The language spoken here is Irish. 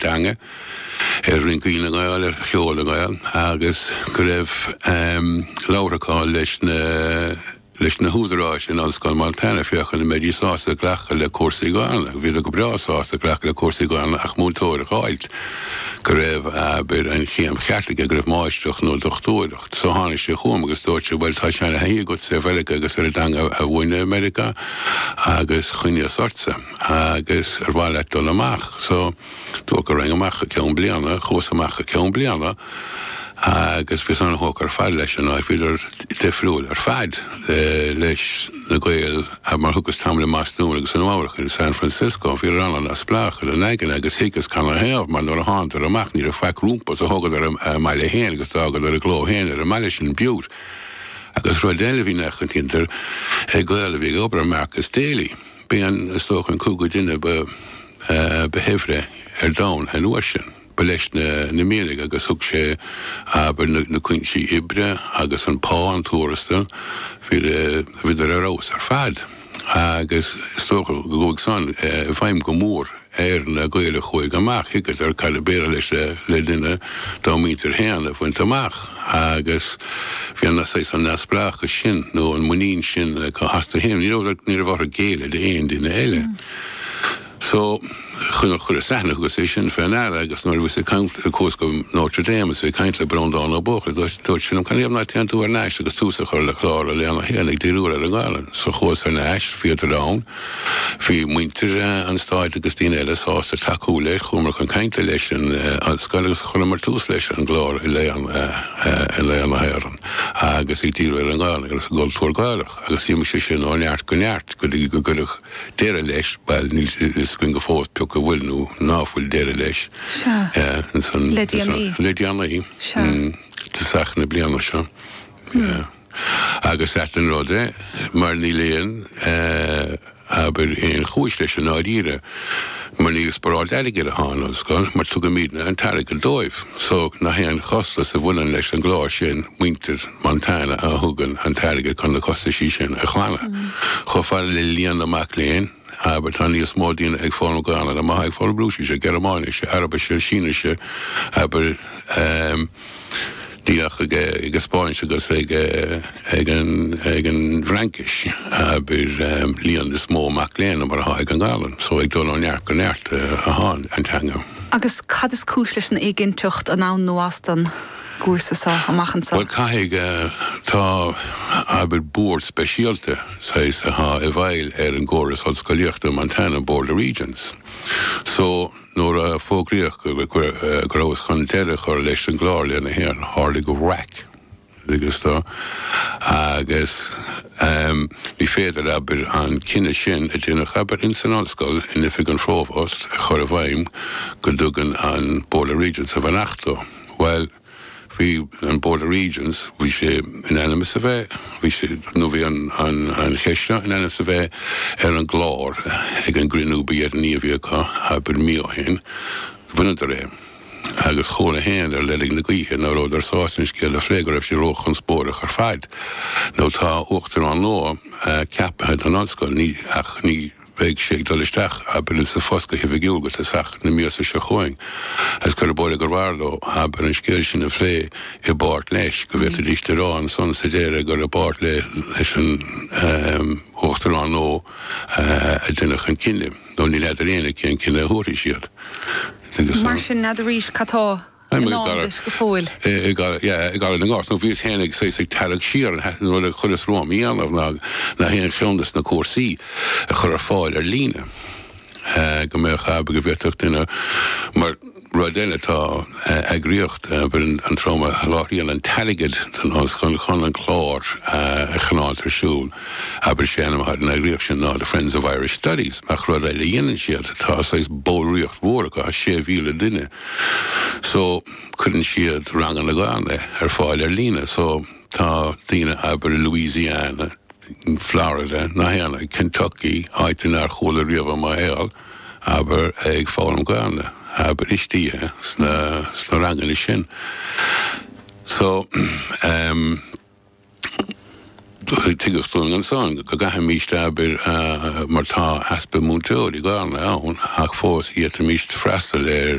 teanga ar rince na nGael ar Cheol na nGael agus go raibh labhradar leis na leis na húdaráis in Ollscoil Montana féachaint an mbeidís sásta glacadh le cúrsaí Gaelainne. Bhíodar go breá sásta glacadh le cúrsaí Gaelainne ach múinteoir a dh'fháilt go raibh, abair, an chéim cheart aige, go raibh máistreacht nó dochtúireacht. So tháinig sé chugam agus dúirt sé, bhuel, tá seanathaithí agat ar Mheiriceá agus ar an dteanga a mhúineadh i Meiriceá agus chuimhníos ortsa. Agus ar mhaith leat dul amach? So, dúrt go raghainn amach go ceann bliana, chuas amach go ceann bliana agus bhíos an-thógtha ar fad leis an áit, bhíodar difriúil ar fad leis na Gaeil a, mar thugas tamall i mBastún agus i Nua-Eabhrac in San Francisco, bhíodar an-neamhspleách ina n-aigne agus thuigeas canathaobh mar nuair a thánadar amach ní raibh faic rompu so thógadar a mbaile féin agus d'fhágadar a gcló féin ar an mbaile sin, Butte. Agus rud eile a bhí nach, an, cinnte do Ghael a bhíodar ag obair, Marcus Daly. B'é an is dócha an cúigiú duine ba shaibhre ar domhan an uair sin. Ba leis na mianaigh agus thug sé, abair, na cuinsí oibre agus an pá, an tuarastal, bhíodar ar fheabhas ar fad agus is dócha go gcuaigh san i bhfeidhm go mór ar na Gaeil a chuaigh amach, thuigeadar cad ab fhéidir leis le duine dá muintir féin a bhaint amach agus bhí an saghas an neamhspleáchais sin nó an mhuinín sin acu astu féin. Ní raibh ní raibh orthu géilleadh d'aon duine eile. So, chuir chuir san, thugas é sin fé ndeara agus nuair a bhíos ag caint nuair chuas go Notre Dame is mé ag caint le Breandán Ó Buachalla dúirt dúirt sé liom 'Canathaobh ná téann tú thar n-ais agus tús a chur le clár a léann a théann ag díriú ar an nGaelainn? So chuas thar n-ais, bhíodar ann, Bhí muintir an stáit agus daoine eile sásta tacú leis. Chuamar chun cainte leis an ollscoil agus chuireamar tús leis an gclár i léann na hÉireann agus ag díriú ar an nGaelainn agus an gcultúr Gaelach agus d'imigh sé sin ó neart go neart go dtí gur cuireadh deireadh leis, bhuel níl fhios againn fós pé acu an bhfuil nó ná fuil deireadh leis le déanaí, i dtosach na bliana seo. Agus ait an rud é, mar níl aon abair aon chúis leis i ndáiríre, mar níl sparáil airgid ann don ollscoil, mar tugaimíd an t-airgead dóibh, so aon chostas a bhaineann leis an gclár sin muintir Montana a thugann an t-airgead chun na costaisí sin a ghlanadh, chomh fada le líon na mac léinn. Abair, tá níos mó daoine ag foghlaim Gaolainne ná mar atá ag foghlaim Rúisise, Gearmáinise, Araibise, Sínise, abair, níl ach ag an Spáinnis agus ag an bhFraincis, abair, líon níos mó mac léinn ná mar atá ag an nGaolainn. So ag dul ó neart go neart atá an teanga. Agus cad is cúis leis an éiginnteacht, ann, a Thraolaigh? gcúrsa seo amach anseo. Bhuel, caithfidh, tá, abair, bord speisialta, saghas, atá i bhfeighil ar an gcóras ollscolaíochta i Montana, Board of Regents. So, nuair a fógraíodh go rabhthas chun deireadh a chur leis an gclár Léann na hÉireann, tharlaigh raic, thuigeas tú, agus ní féidir, abair, an cinneadh sin a déanadh, abair, in san ollscoil, in oifig an phrovost, a chur i bhfeidhm go dtugann an Board of Regents a bheannacht dó. Bhuel, bhí an Board of Regents, bhí sé in ainm is a bheith, bhí sé, nó bhí an, an, an cheist seo in ainm is a bheith ar an gclár ag an gcruinniú ba dheireanaí a bhí acu, abair mí ó shin, bhaineadar é. Agus chuala féin ar leirg na gaoithe ná rabhadar sásta an scéal a phlé, go raibh sé róchonspóideach ar fad. Now tá Uachtarán nua ceaptha don Ollscoil, ní, ach ní, bheidh sé ag dul isteach abair sa phost go hoifigiúil go tosach na míosa seo chugainn agus cuireadh báire gur mhaith leo abair an scéal sin a phlé i bpáirt leis, go bhféadfaidís a rá ansan sa deireadh gur i bpáirt leis an Uachtarán nua a deineadh an cinneadh nó ní fheadar éinne cén cinneadh a thabharfaidh siad. Mar sin, n'fheadar arís cad tá. I ndán dúinn go fóill. I gCarraig na nGort, nó bhíos féin ag tarrac siar an t-aon rud a chuireas romham a dhéanamh ná nach aon cheann de na cúrsaí a chur ar fáil ar líne go mbeadh go bhféadfadh duine mar rud eile tá eagraíocht a bhfuil an trom a sholáthraíonn an t-airgead don Ollscoil chun an clár a choinneáil ar siúl abair sé an eagraíocht sin ná The Friends of Irish Studies ach rud eile a dhéanann siad tá saghas ballraíocht mhór acu, 6,000 duine. So, cuireann siad ranganna Gaeilge ar fáil ar líne. So, tá daoine, abair, i Louisiana, Florida, Indiana, Kentucky, áiteanna nár chuala riamh i mo shaol, abair, ag foghlaim Gaeilge, abair, istigh sna, sna ranganna sin. So, ehm, tuigeadh dúinn ansan go gcaithfimíst, abair, mar tá easpa múinteoirí Gaeilge ann ach fós fhéadfaimíst freastal ar,